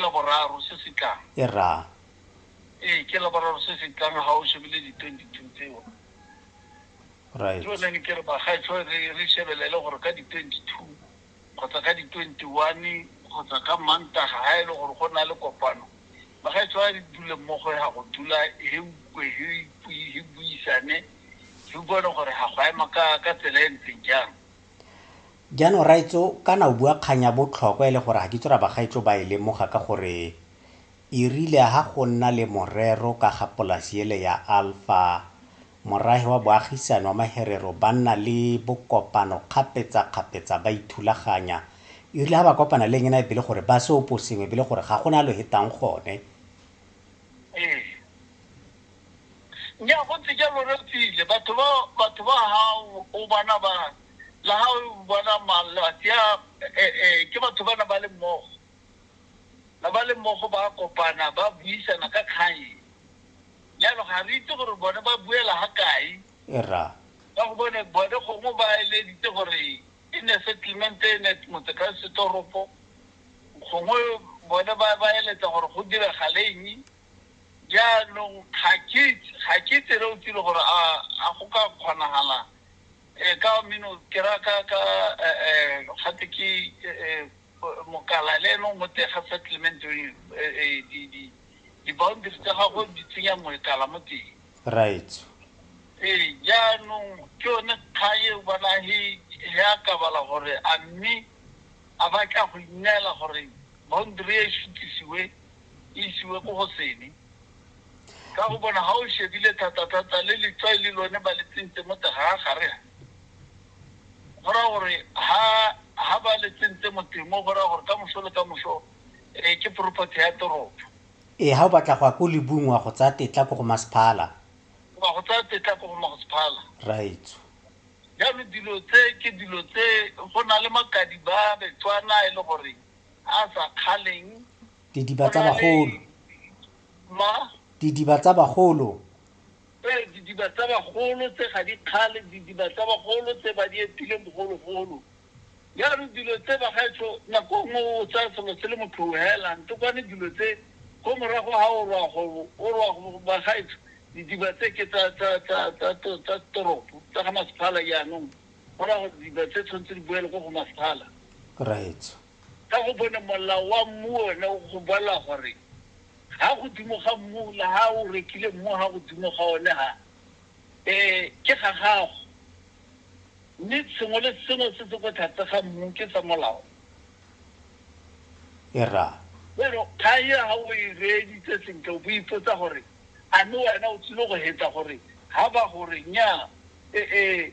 Laboraro se se tlang. E ra. Ee, ke Laboraro se se tlang ga o shebile di-twenty-two tseo. Right. Ke yone ne ke re bagaetsho re re shebelele gore ka di-twenty-two kgotsa ka di-twenty-one kgotsa ka Mantaga ga e le gore go na le kopano bagaetsho a re dule mmogo ga go dula he ukwe he ipui he buisane he bone gore ga go ema ka ka tsela e ntseng jang. Jaanong raetso kana o bua kgang ya botlhokwa e le gore ga ke itse gore a bagaetsho ba e lemoga ka gore e rile ha go nna le morero ka ga polasi ele ya Alpha morahe wa boagisani wa Maherero ba nna le bokopano kgapetsa-kgapetsa ba ithulaganya e rile ha ba kopana le engena e bele gore ba se opo sengwe bele gore ga gona lo hetang gone ee nya go ntse jalo re tsile batho ba batho ba hao o bana ba la ha o bona mang la sia eh, eh, ke batho ba na ba le mmogo na ba le mmogo ba kopana ba buisana ka kgang jalo ga re itse gore bone ba buela ga kae ra ka go bone bone gongwe ba eleditse gore e ne settlement e ne motse ka setoropo gongwe bone ba ba eletsa gore go diragaleeng jaanong ga ke itse- ga ke itse re o tsile gore a a go ka kgonagala Ee, ka mino ke ra ka ka um gate ke um mokala le ene o mo teng ga settlement di-boundary tsa gago di tsenya moekala mo teng right ee jaanong ke yone kgang eo bona he he a ka bala gore a mme a batla go inela gore boundary e sutisiwe e isiwe ko go sene Ka go bona ga o shebile thata-thata le letswai le lone ba le tsentse mo teng ga gare ha. Go raya gore ha ha ba le tsentse mo teng mo go raya gore ka moso le ka moso eh, ke property ya toropo. Ee, ga o batla go ya ko lebung wa go tsaya tetla ko go masephala. Wa go tsaya tetla ko go masephala. Raitso. Jaanong dilo tse ke dilo tse go na le makadi ba Betswana e le gore a sa kgaleng Didiba tsa bagolo. Ma? Didiba tsa bagolo. Ee, didiba tsa bagolo tse ga di kgale, didiba tsa bagolo tse ba di etileng bogologolo. Jaanong dilo tse bagaetsho nako nngwe o tsaya selo se le motho o hela ntokwane dilo tse ko morago ga o rwa go o rwa go bagaetsho didiba tse ke tsa tsa tsa tsa tsa toropo tsa ga masephala jaanong go raya gore didiba tse tshwanetse di boele ko go masephala. Right. Ka gobane molao wa mmu one go bolela gore ha godimo ga mmu le ha o rekile mmu ha godimo ga one ha um ke ga gago mme sengwe le sengwe se se ko tlhatse ga mmu ke sa molao era jalo kgang e ga o e reeditse sentle o bo ipotsa gore a mme wena o tsile go hetsa gore ga ba gore nnyaa ee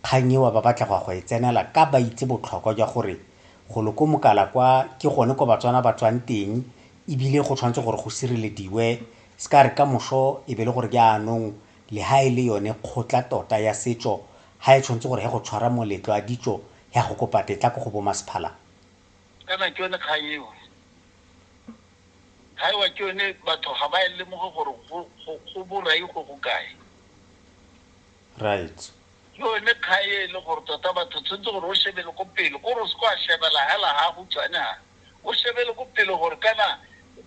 Kgang eo ba batla go ya go e tsenela ka ba itse botlhokwa jwa gore golo ko Mokala kwa ke gone ko Batswana ba tswang teng ebile go tshwanetse gore go sirelediwe se ka re ka moso e be le gore jaanong le ha e le yone kgotla tota ya setso ha e tshwanetse gore he go tshwara moletlo a ditso ya go kopa tetla ko go bo masephala kana ke yone kgang eo ga ewa ke yone batho ga ba e lemoge gore go borai go go kae right. Ke yone kgae e le gore tota batho tshwanetse gore o shebele ko pele ko re se kwa shebela hela ha go tswane ha o shebele ko pele gore kana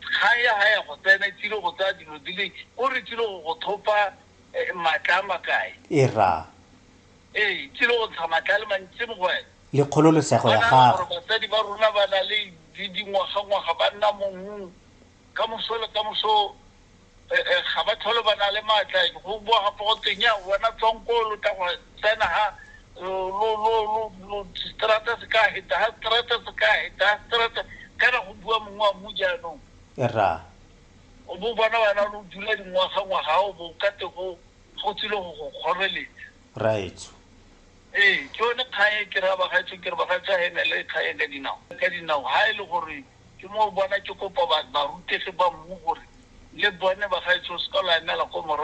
kgang ya ha ya go tsena e tsile go tsaya dilo di le ko re tsile go go thopa eh, matla a makae e ra ee tsile go ntsha matla le mantsi mo go wena le kgololesego ya gago basadi ba rona ba na le dingwaga ngwaga ba nna mongwe ka moso le ka moso eh, eh, ga ba tlhole ba na le maatla go bua gape go teng ya wena tswang ko lo tla go tsena ga strata se ka heta ga strata se ka heta ga strata kana go bua mongwe wa mo jaanong ra o bo bona wena lo dula dingwaga ngwaga o bo ka te go go tsile go go kgoreletsa raetso ee ke yone kgang e ke re a bagaetso ke re bagaetso ga e na le kgang e ka dinao ka dinao ga e le gore Ke moo bona ke kopa ba, barutegi ba mmu gore le bone bagaetsho o seka lwa emela ko morago.